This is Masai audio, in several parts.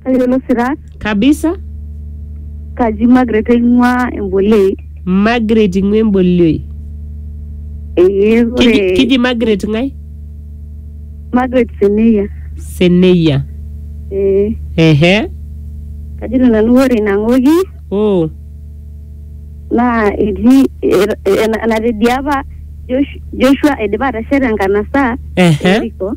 Tayiolo sirat. kabisa Kaji Margaret aing'ua Embolei. Margaret ing'ua embolioi Ee kiji, ore kiji Margaret ng'ae Margaret Seneya. Seneya Ee ehe kajito nanu ore ina ng'oki oh naa etii er- ena- enatediapa Josh- Joshua eidipa atesheta enkanasa ehe Yeriko.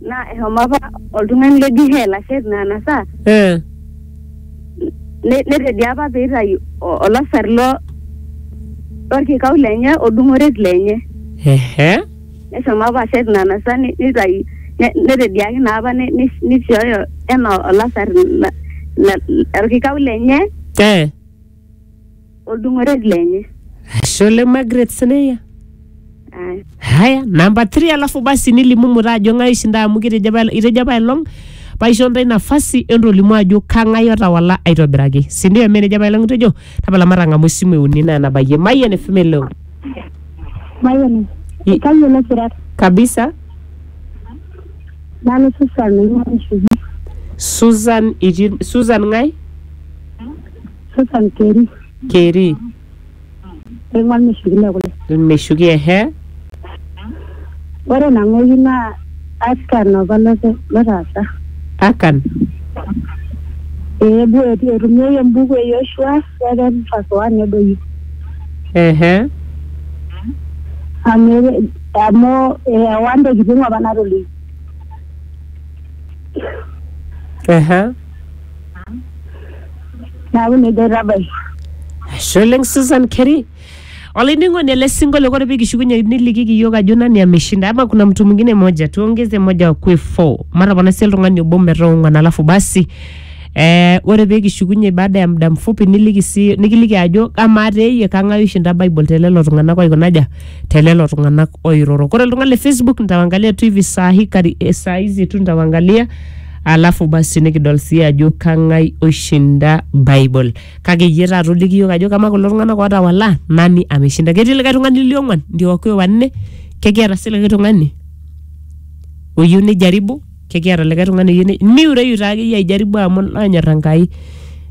Naa eshomo apa oltung'ani le Gihel ashet ina anasa Eh. ne- netedia apa pee eitayu o- olasar lo lorkikau lenye odung'oret lenye. Ehe. Neshomo apa ashet ina anasa ne- neitayu ne- netediaki naa apa ne- ne- neishooyo enaa olasar la- la- lorkikau lenye Eh. Oldung'oret lenye. Ashe oleng Margaret Sineya. Aya. Haya, namba 3 alafu basi nilimu muta ajo ng'ae ishinda amu kitejo apa itejo apa elong paisho ntae nafasi entolimu ajo kang'ae otawala aitobiraki. Si ndio eme nejo apa elong itejo? Tapala matang'amu esimu e uni naa nabayie. Mayian FM eleo. Mayian. I- Kayiolo sirat. Kabisa. Nanu Susan Ng'aishubi. Susan itii Susan ng'ae? Sasa nkeri. keri Eng'uan meshukile kule. ilmeshuki ehe Ore nang'oki naa Akan opa lote lotaasa. akan Eebu eti- etumieki embuku e Yoshua second verse one nedoyio. ehe Amu ere- amu eewa ntokitin apa natolikio. ehe Neaku nejo aitabai. Ashe oleng Susan Keri. Olainining'oni ele sinkolio ore pikishukunye nilikiki iyiook ajo nani ameshinda ama kuna mtu mwingine moja tuongeze moja wakue four matapona sii oltung'ani obo metaa ong'wan alafu basi eh, ore pikishukunye baada ya muda mfupi niliki sii nikiliki ajo amaa teeyie kang'ae oishinda Bible telelo tung'anak oikunaja telelo tung'anak oiroro. Ore oltung'ani le Facebook nitawangalia tu hivi saa hii kari, eh, saa hizi tu nitawangalia Alafu basi nikidol sii ajo kang'ai oishinda Bible. Kake iyie taata oliki iyiook ajo kamaa kulo tung'anak ootawala nani ameshinda. Ketii likae tung'ani liong'uan ndio wakuwe wanne? Kekiata sii likae tung'ani oyieu nijaribu? Kekiata likae tung'ani oyieu ni miureyu taa akeyie aijaribu amu naanyor Enkai.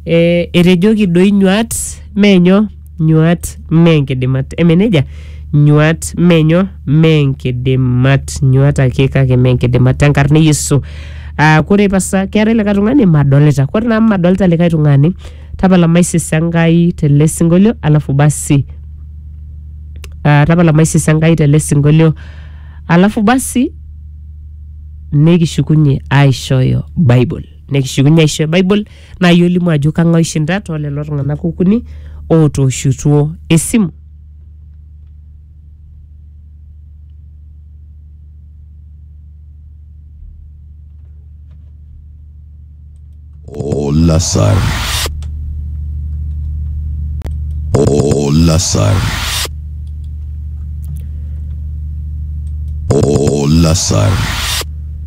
Eh, etejoki doi nyuat mee nyoo nyuaat mee nkidimat. Eme neija? Nyuaat mee nyoo? Mee nkidimat. Nyuaat ake kake mee nkidimat te nkarna e Yesu. Aa kore pasa keetae likae tung'ani madolita. Kore naa amu madolita likae tung'ani, tapala maisisa Enkai tele sinkolio alafu basi aa tapala maisisa Enkai tele sinkolio alafu basi nikishukunye aishooyo Bible. Nikishukunye aishooyo Bible. Naa iyie olimu ajo kang'ae oishinda too lelo tung'anak okuni ootooshutuo esimu. Olasar. Olasar. Olasar.